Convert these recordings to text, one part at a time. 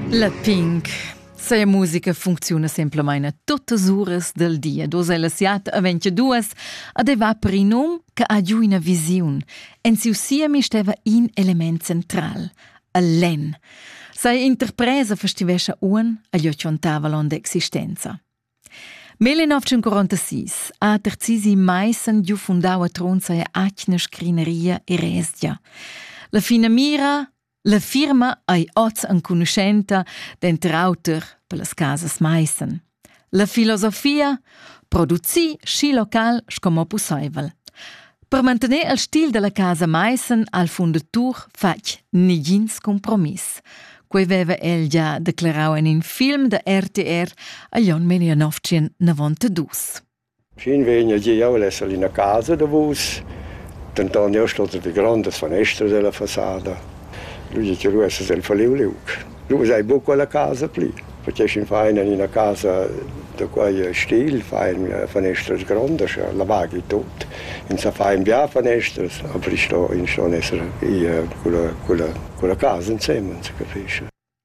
La Pink Sa musica funcziuna semplamain tuttas uras del dia, dus ella siat aventi duas, ad va per in um che ha giù ina visiun. En siu siemi steva in element central, il len. Sa interpresa festivescia un agli occhiontava l'onda existenza. Mel in 1946 ha Terzisi Meissen giu fundau a Tronza e atgna scrineria e resdia. La fina mira La firma ei oz enconuschenta denter auter per las casas Maissen. La filosofia producir schi local sco mo pusseivel. Per mantener il stil dalla casa Maissen al fundatur fatg negins compromiss. Quei veva el già declarau en in film da RTR a Jon Melianovcien 92. Fin vegn el gieu el esser in ina casa davos, denton jeu stot der grondas fanestras ella fasada. Lu di ti, lu essas el falliu liug. Lu ves'ei buca quella casa pli, perché sch'in fa en ina casa da quei stil, fa en fanestras grondas, la vaghi tut. Ins sa fa in bia fanestras, aber ins sto ins ston esser i culla culla culla casa insemen, se capisce.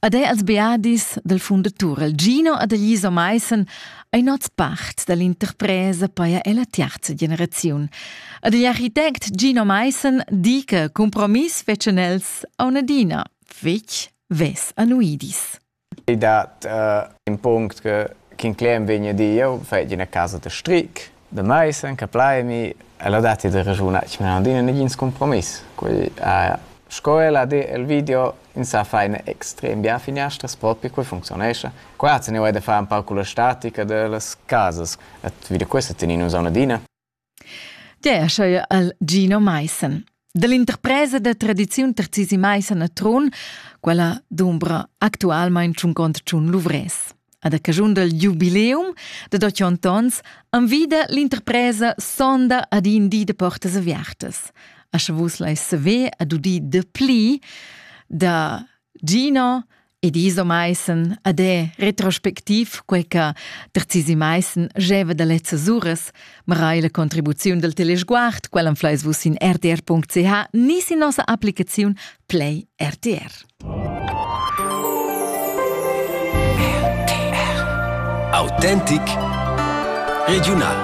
Ad è als beadis dal fundatur il Gino ad Elisa Meissen ein oz part dall'interpresa paia ella terza generaziun. Ad igl architect Gino Meissen di che compromiss fetschen els a un'adina fetg ves annuidis. I dat uh, in punct che King Clem vegna dir, eu fetg ina casa da stric, Da maisen che plaimi el ha datti da raschuna chi m'han adina negins cumpromiss. Quei ha sco el ha di el video insà faina extrem bien finiastras propi quei funzionescha. Qua se ne vai da far un pau culla statica dellas casas et video questa tenin nus aunc adina. Der scheuer al Gino Maissen. Dall'interpresa da tradiziun Terzisi Meisa na Tron, quella dumbra actualmain tschuncont tschun luvrès. Ad a cagiun dal jubileum da dotg ontons anvida l'interpresa sonda ad in di de portas aviartas. A sche vus lais saver ad udi de pli da Gino, Ed iso maissen, adè, retrospectiv, quei che terzisi maissen geva da lezzas uras, ma rai la contribuziun del telesguard, quella anfleis vus in rtr.ch ni sin nossa applicaziun Play RTR. Autentic Regional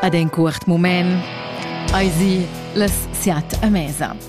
Ad en curt moment Eisi les siat a mesa.